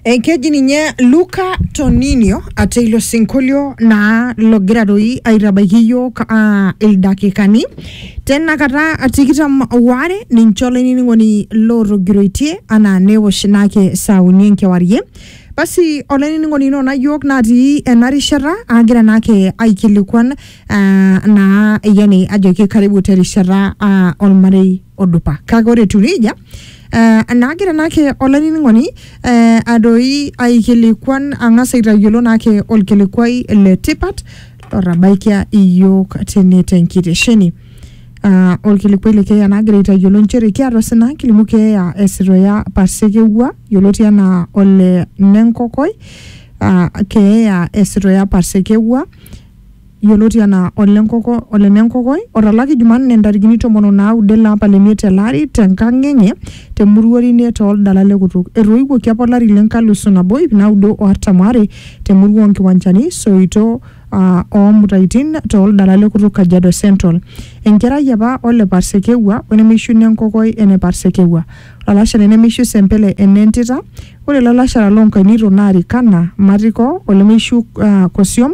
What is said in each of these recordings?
Enkeji ninye Luca Toninio ate ilo sinkolio naa logira doi aitabaiki iyiok ah, ildakikani tenakata tikitam waare ninche olainining'oni lootogiroitie anaa neosh naake saa uni enkewarie. Basi olainining'oni ino naa iyiok natii ena rishata agira naake aikilikuan ah, naa yani ajoki karibu terishata ah, olmarei. odupa kake ore etiu nejia eh, naagira naake olainining'oni eh, adoi aikilikuan ang'as aitayiolo naake olkilikuai le tipat lotabaikia iyiook tene tenkitesheni Ah, olkilikuai le keeya naagira aitayiolo nchere kiata osina kilimu keeya esitoya pasekewua yioloti anaa ole nenkokoi ah, keeya esitoya pasekewua yioloti anaa Ole Nenkokoi, otalaki Jumanne ntarikini tomon o naudo ele apa le miet ele ari te nkang enye te Muruorine too Ldala le Kutuk. Etoiwuoki apa olari le nkalusu nabo iip naudo o artam o are te murua oo Nkiwanchani, Soito oo Mutaitin too Ldala le Kutuk Kajiado Central. Enkerai apa o le Parsekewua o nemeishu Nenkokoi ene Parsekewua. Olalashare nemeishu Sempele ene Ntita. Ore lalashara loo nkainito naa Rikana, Matiko, olemeishu Kosiom,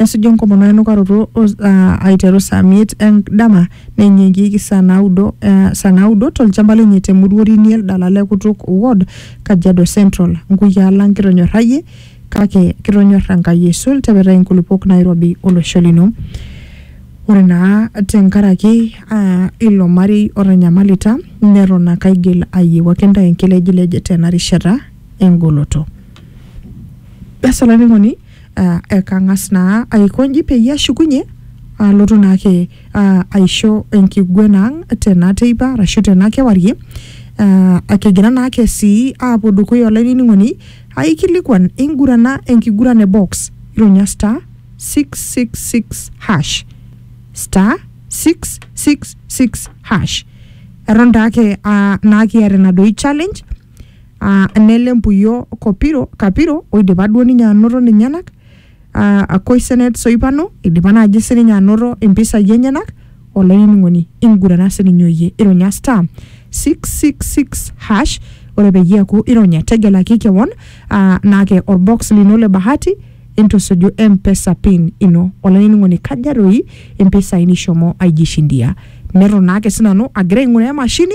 nesuju enkomono enukaroto o- aa, aiteru saa miet endama neinyiangieki saa naudo eh, saa naudo tolchamba lenye te Muruorini Eldala le Kutuk Ward, Kajiado Central. Nkuyaa lang kitonyorrayie kake kitonyor Enkai aisul tepetai nkulupuok nairobi olosho lino. Ore naa tenkaraki aa, ilo marei otanyamalita neton ake aigil ayiewaki ntae enkilejilej tena rishata engoloto. Basi olainining'oni uh, ekang'as naa aikonji peyie ashukunye alotu naake uh, aisho enkiguena ang tena teipa arashu tena kewarie uh, akigira naake sii aapuo dukuya olainining'oni aikilikuan ingurana enkiguran e box ironya star 666 hash star 666 hash eton taake uh, naa kiata ina doi challenge uh, nele mpuyo kopiro kapiro oidipa duo ninye anoto ninyenak uh, koisenet soipano idipa naaji sininye anoto impisai enyenak olainining'oni ingurana sininye oyie ironya star 666 hash ore peyie eaku ironya tegelaki kewon uh, naake orbox lino le bahati intusuju mpesa pin ino olainining'oni kaja doi impisai nishomo aijishindia neton naake sinanu agira aing'uraa emashini